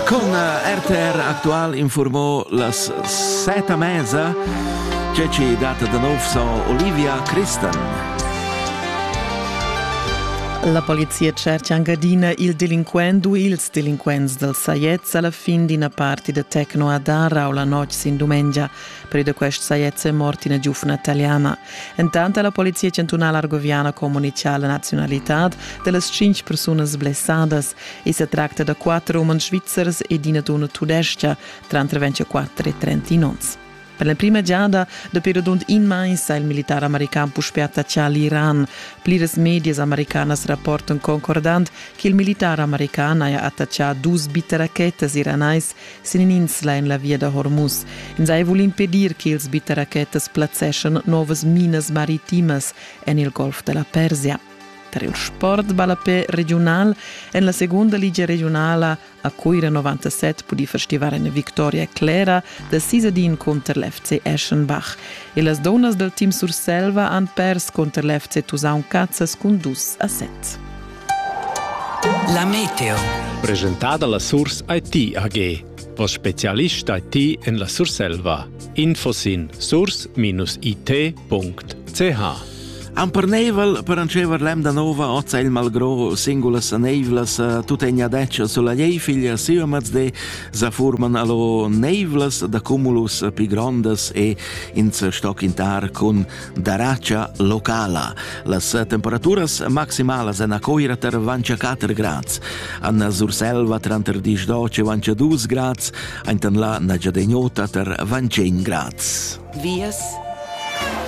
Corna RTR Aktual informò las seta mezza che ci data da nov son Olivia Christan. La polizia cerca angadina il delinquent u ils delinquents dal Saiez alla fin d'ina parti da Tecno a Darra o la notg sin dumengia. Per da quest Saiez è morta una giufna italiana. Intanto la polizia chantunala argoviana comunica la nazionalità delle cinque persone blessadas E sa tracta da quattro umans svizzers ed ina donna tudestga, tranter 24 e 30 onns. Per la prima giada dapi radund in mais ha il militar american puspè attaccà l'Iran. Pliras medias americanas rapportan concordant che il militar american haja attaccà dus bitterachettas iranais sin in'insla en la via da Hormuz. Ins ha vul impedir che ils bitterachettas plazzeschan novas minas maritimas en il Golf da la Persia. Per il sport ballapé regiunal en la segunda ligia regionala a Cuira 97 pudì festivar en victoria clera da sis ad in cunter l'FC Eschenbach. E las donas dal team Surselva han pers cunter l'FC Tusaun Cazzas cun dus a set. La Meteo. Presentada la Surs IT AG. O specialista ti en la Surselva. Info sin source-it.ch Amparneivel per ancever l'emda nova ozza il malgro singulas neivlas tut en adeccia sulla ei figlia siomaz de sa forman allo neivlas da cumulus pi grondas e in stock in tar cun da racha locala. Las temperaturas maximalas en a Coira ter vancia 4 grads, Anna Surselva tranter 10 12 vancia 2 grads, aintan la Nagyadegnota ter vancen grads. Vias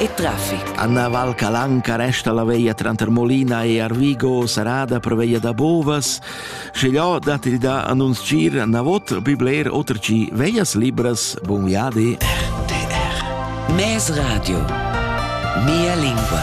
e traffic. Anna Val Calanca resta la veia tranter Molina e Arvigo, sarada per veia da Bovas, Sche ja dat il da annunz gir na vot bi bler oter chi veias libras bun viadi. RTR Mes Radio Mia lingua